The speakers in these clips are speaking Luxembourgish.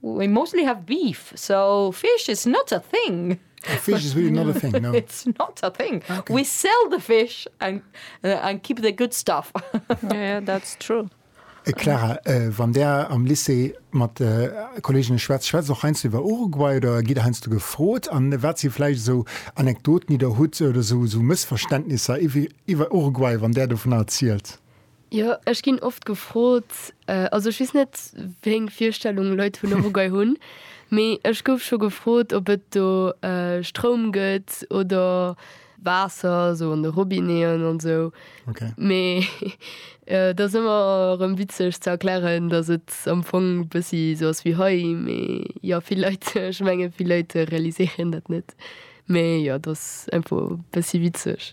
We mostly have beef, so fish is not a thing. Oh, fish is really not a thing, no. It's not a thing. Ah, okay. We sell the fish and, uh, and keep the good stuff. yeah, yeah, that's true. Äh, Clara, äh, wann där am Lycée mat de äh, Kolleginnen schwätzt, schwätzt och heiansdo iwwer Uruguay oder gitt heiansdo gefrot? An wat si vläicht esou Anekdoten, déi der hutt oder esou esou Mëssverständnisser iwwer Uruguay, wann där dovunner erzielt? Jo, ech ginn oft gefrot, also ech weess net wéi eng Virstellung Leit vun Uruguay hunn, mee ech gouf scho gefrot, ob et do Stroum gëtt oder Waasser, esou an de Robinéeën an esou. Mee dat ass ëmmer erëm witzeg ze erklären, datt et am Fong e bëssi esou ass wéi hei. Mee jo, vill Leit, ech menge vill Leit realiséieren dat net. Mee jo, dat ass einfach e bëssi witzeg.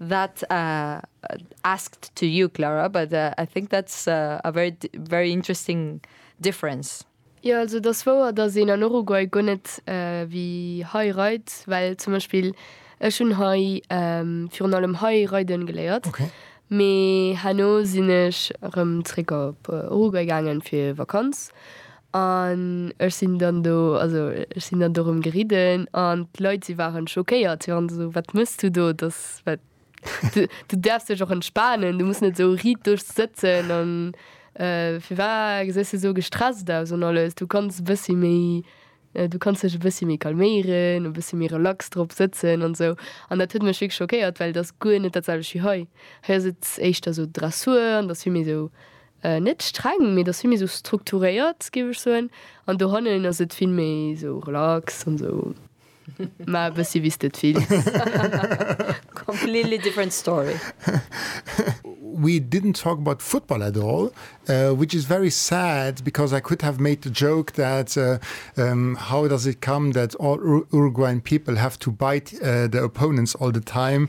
That asked to you Clara, but I think that's a very very interesting difference. Jo also et ass wouer dass een an Uruguay guer net wéi hei reit, well zum Beispill ech hunn hei virun allem hei reiden geléiert, mee herno sinn ech erëm zréck op Uruguay gaangen fir Vakanz An ech sinn dann do, also ech sinn dann do erëm geridden an d'Leit, si waren schockéiert. Si waren esou, Wat mëss du do? Dass, wat, du, du däerfs dech och entspanen, du muss net esou riiddeg sëtzen an firwat gesäis du esou gestresst aus an alles. Du kanns e bëssi méi, du kanns dech e bëssi méi calméieren, e bëssi méi relax drop sëtzen an esou. An dat huet mech wierklech schockéiert, well et ass guer net dat selwecht wéi hei. Hei ass et éischter esou Dressur an et ass vill méi esou Net streng, mee et ass vill méi esou strukturéiert, géif ech soen. An dohannen ass et vill méi esou relax an esou. Maach e bëssi wéi s de et wéills. Completely different story. We didn't talk about football at all, which is very sad because I could have made the joke that how does it come that all Uruguayan people have to bite their opponents all the time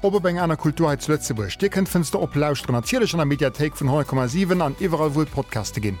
Op op eng aner Kultur hei zu Lëtzebuerg. Dir kënnt d'Fënster op lauschteren, natierlech an der Mediathéik vun 100,7 an iwwerall wou et Podcaste ginn.